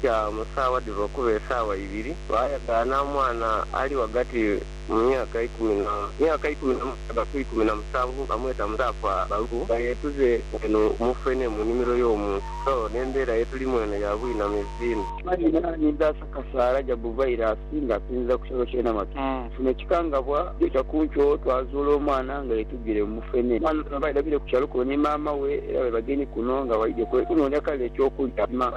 kya mu saawa dhiva okuba esaawa ibiri, baayagaana omwana ali ghagati mu myaka ikumi na myaka ikumi na mukaaga ku ikumi na musanvu, bamweta Musaafu Abaluku, nga yeetuze eno mu Fene mu nimiro y'omuntu. So n'embeera ye tulimu eno ya bwinamizi inho. Mani naanidha asa kasaala Jabu vairasi nga asinziira ku kyalo kye Namatu. Nfuna ekikangabwa njoja ku nkyo twazuula omwana nga yetugire mu Fene. Omwana ono baidha bire ku kyalo kuno ni maama we era baidha bagenye kuno nga baidhye kunoonia kale eky'okulya.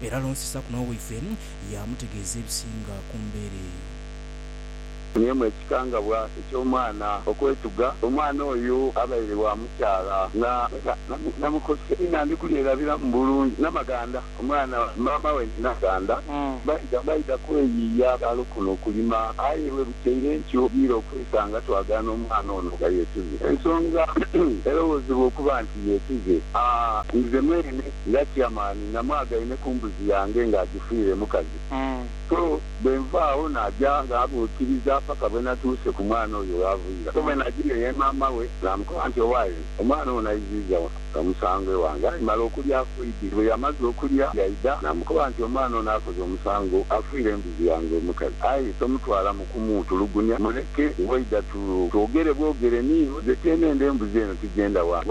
Era alonsisaaku n'owe waife, yaamutegeeza ebisinga ku mbeera eyo. Funyamu ekikangabwa eky'omwana okwetuga. Omwana oyo abaire wa mukyala na, na, na, na mukose. Inha ndi kulyerabiramu bulungi. Namaganda, omwana, maama we ni Namaganda baidha, baidha kweyiiya kalo kuno okulima. Aye bwe bukyaire ntyo ogiire okwesanga twagaana omwana ono nga yeetuze. Ensonga erowoozebwa okuba nti yeetuze, a, nze mweene nga Chairman. Namwagaine ku mbuzi yange nga agifiire mukazi, so bwe nva agho naja nga abuukiriza paka bwe natuuse ku mwana oyo gh'aviira. So bwe najiire ye maama we naamukoba nti, Owaye, omwana ono aiziiza omusango ewange. Aye male okulya afoidhe. Bwe yamaze okulya yaidha naamukoba nti, Omwana ono akoze omusango, afiire embuzi yange omukazi. Aye tomutwalamu kumuutulugunya, muleke. Waidha twogere bwogere niiwe, nze tyenenda embuzi eno tigyenda wange.